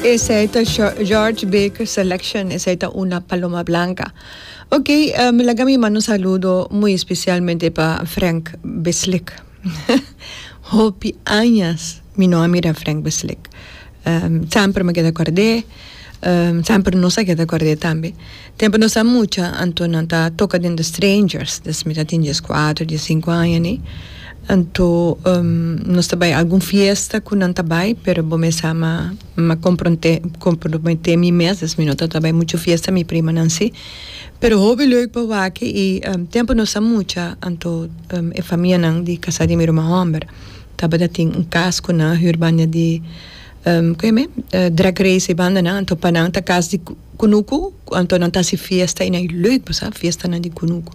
Esey ta George Baker selection esey ta una paloma blanca ok mi laga mi manda un saludo muy especialmente pa Frank beslik hopi añas mi no a mira Frank beslik semper mi keda kord'é semper nos a keda kord'é tambe. Tempu nos a mucha, anto nan ta toka den The Strangers, des mi ta tin dies kuater, dies sinku aña ni, anto nos ta bai algun fiesta ku nan ta bai, pero bo mes sa ma m'a kompronte komprometé mi mes, des mi no ta ta bai muchu fiesta, mi primanan si. Pero hopi leuk pa wak i tempu nos a mucha, anto e famianan di kasá di mi ruma hòmber tabata tin un kas ku nan a hür banda di ku e men drag race i bandanan, anto pa nan ta kas di Kunuku ku anto nan ta si fiesta i nan e leuk pa sa fiestanan di kunuku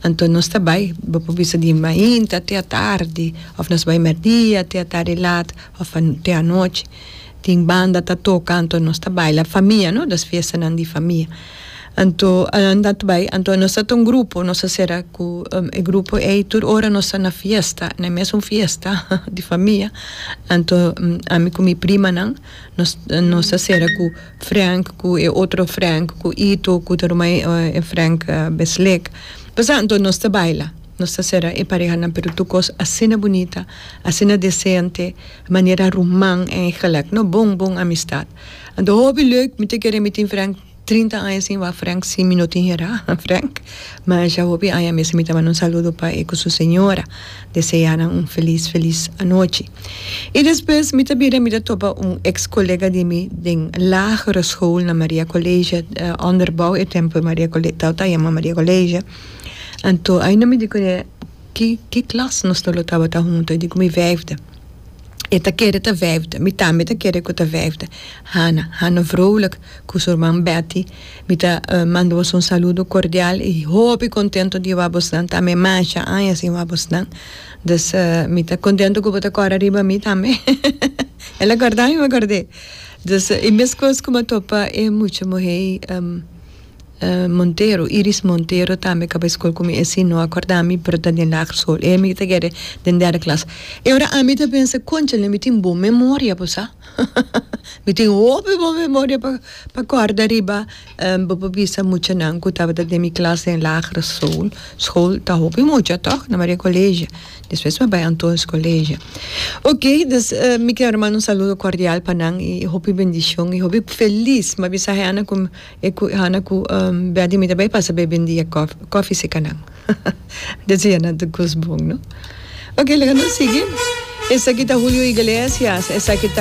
anto nos ta bai bo por bisa di mainta te atardi of nos bai merdia te atardi lat of te anochi tin banda ta toka anto nos ta baila famia no dos fiestanan di famia anto nan ta bai anto nos ta ta un grupo nos ta sera ku e grupo ei tur ora nos ta na fiesta na e mesun fiesta di famia anto ami ku mi primanan nos nos ta sera ku. Frank ku e otro Frank ku Ito ku ta ruma e Frank Besleck pasá anto nos ta baila nos ta sera e parehanan pero tur kos asina bunita asina desente manera ruman èigelik no bon bon amistat anto hopi leuk mi ta kere mi tin Frank trinta aña sin wak Frank si mi no tin herá Frank masha hopi aña mester mi ta manda un saludo pa e ku su señora deseanan un felis felis anochi. I despues mi ta bira mi ta topa un ex colega di mi den lagere school na Maria Colegia, onderbouw e tempo Maria Colegia tawata a yama Maria Colegia, anto ai no mi di cuné ki ki klas nos dos lo tabata hunto i di cu mi vijfde e ta kere ta vijfde mi tambe ta kere cu ta vijfde Hana, Hana Vrolijk cu su rman Betty mi ta manda boso un saludo cordial i hopi contento di wou a bos nan tambe masha aña sin wou a bos nan. Dus mi ta contento cu bo ta cora riba mi tambe. El a corda mi m'acord'é. Dus e mescos cu m'a topa e mucha muhé Montero, Iris Montero tambe caba escol cu mi e si no a corda mi pero ta den lager school. E mi ta kere den derde klas. E ora ami ta pensa conchale mi tin bon memoria pues sa. mi tin hopi bon memoria pa corda riba. Bo por bisa muchanan ku tabata den mi klas den lagere school, school, ta hopi mucha tòg na Maria Colegio, despues mi bai Antoñ's Colegio. Oke, dus mi quiero manda un saludo cordial pa nan i hopi bendicion i hopi felis mi a bisa Hannah ku Hannah ku Betty mi ta bai pasa bebe un dia coffee, coffee si kanan deci ya nan ta kos bon no. Oke laga nos sigui, esaki ta Julio Iglesias, esaki ta.